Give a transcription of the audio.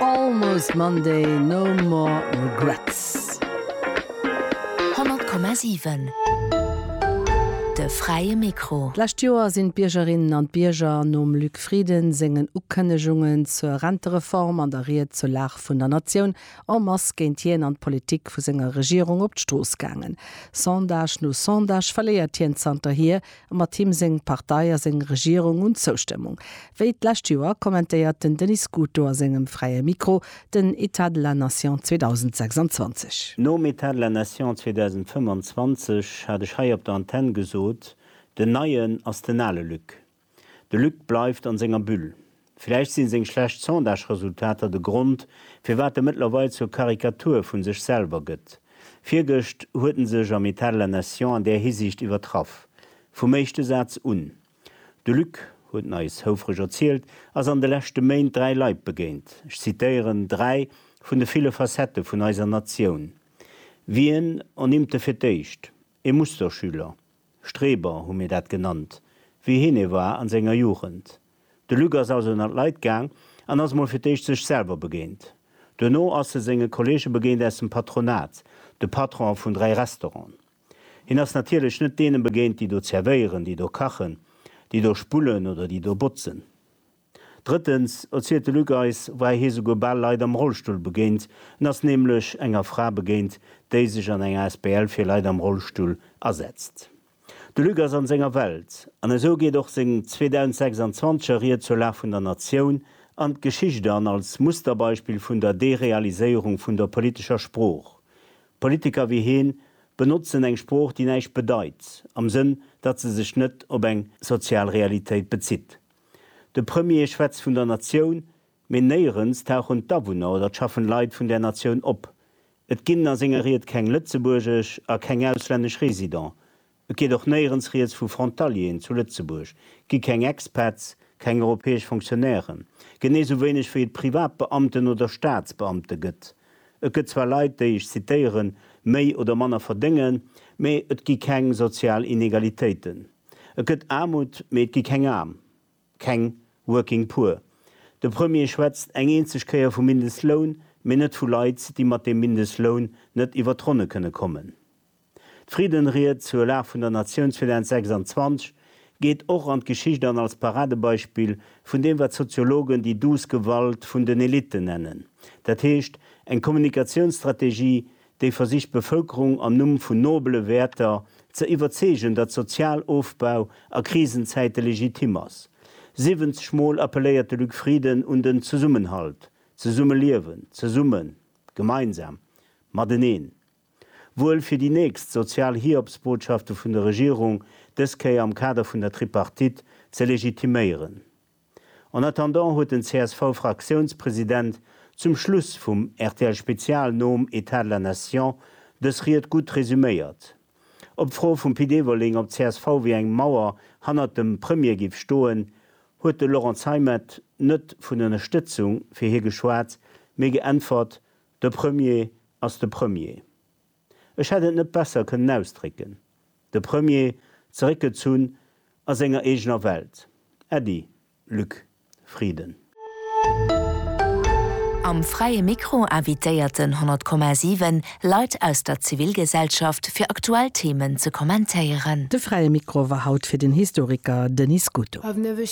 Almost Monday, no more regrets. 100,7 De fräie Mikro. D'lescht Joer sinn d'Biergerinnen an d'Bierger nom Luc Frieden sengen Ukënnegungen zur Rentereform an der Ried zur Lag vun der Natioun en masse géint hien an d'Politik vu senger Regierung op d'Strooss gaangen. Sondage no Sondage verléiert hien zanterhier A mat him seng Partei a seng Regierung un Zoustëmmung. Wéi d'lescht Joer kommentéiert den Denis Scuto a sengem Fräie Mikro den État de la Nation 2026. Nom État de la Nation 2025 hat ech hei op der Antenn gesot, den Neien ass den ale Luc. De Luc bleift an senger Bulle. Vläicht sinn seng schlecht Sondage-Resultater de Grond, firwat e mëttlerweil zur Karikatur vun sech selwer gëtt. Virgëscht huet en sech am Etat de la Nation an där Hisiicht iwwertraff. Vum éischte Saz un. De Luc, huet en eis houfreg erzielt, ass an de leschte Méint dräi Leit begéint, ech zitéieren, dräi vun de ville Facettë vun eiser Natioun. Wien? En Imte fir d'éischt. E Musterschüler. Streber hu mir dat genannt, wéi hien e war an senger Jugend. De Luc ass also ënnert Leit gaang an ass mol fir d'éischt sech selwer begéint. Duerno ass e senge Kolleege begéint aus dem Patronat, de Patron vun 3 Restauranten. Hien ass natierlech net deene begéint, déi do zervéieren, déi do kachen, déi do spullen oder déi do botzen. Drëttens, erzielt de Luc eis, war hie souguer bal Leit am Rollstull begéint. En ass nämlech enger Fra begéint, déi sech an enger Asbl fir Leit am Rollstull asetzt. De Luc ass an senger Welt, an esou geet och seng 2026 er Ried zur Lag vun der Natioun an d'Geschicht an, als Musterbeispill vun der Derealiséierung vun der politescher Sprooch. Politiker wéi heen benotzen eng Sprooch déi näischt bedeit, am Sënn datt se sech net op eng sozial Realitéit bezitt. De Premier schwätzt vun der Natioun, mee néierens tauchen d'Awunner oder d'schaffen Leit vun där Natioun op. Et ginn a senger Ried keng lëtzebuergesch a keng auslännesch Résident, et geet och néierens rieds vu Frontalieren zu Lëtzebuerg, gi keng Expats, keng europäesch Fonctionnairen, genee sou wéineg wéi et Privatbeamten oder Staatsbeamte gëtt. Et gëtt zwar Leit, déi, ech zitieren, méi oder manner verdéngen, mee et gi keng sozial Inegalitéiten. Et gëtt Aarmut, mee et gi keng Aarm. keng working poor. De Premier schwätzt eng eenzeg Kéier vum Mindestloun, mee net vu Leit, déi mat deem Mindestloun net iwwer d'Ronne kënne kommen. D'Friddenried zur Lag vun der Natioun 2026 geet och an d'Geschicht an als Paradebeispill vun deem, wat d'Soziologen déi douce Gewalt vun den Elitten nennen, dat heescht eng Kommunikatiounsstrategie, déi versicht d'Bevëlkerung am Numm vun nobele Wäerter ze iwwerzeegen, datt Sozialofbau a Krisenzäite legitim ass. 70 mol appelléiert de Luc Frieden un den Zesummenhalt, Zesummeliewen, zesummen, gemeinsam, mateneen. Wuel fir déi nächst sozial Hiobsbotschafte vun der Regierung, dës Kéier am Kader vun der Tripartite ze legitiméieren. En attendant huet den CSV-Fraktiounspresident zum Schluss vum RTL-Spezial nom Etat de la Nation dës Ried gutt resuméiert. Op d'Fro vum Pit Everling, ob csv wéi eng Mauer hannert dem Premier géif stoen, huet de Laurent Zeimet net vun Ënnerstëtzung fir hie geschwat, mee geäntwert, De Premier ass de Premier. Ech hätt et net besser kënnen ausdrécken. De Premier, zeréckgezunn a senger eegener Welt. Äddi, Luc Frieden. Am Fräie Mikro invitéierten 100,7 Leit aus der Zivilgesellschaft fir aktuell Themen ze kommentéieren. De Fräie Mikro war haut fir den Historiker Denis Scuto.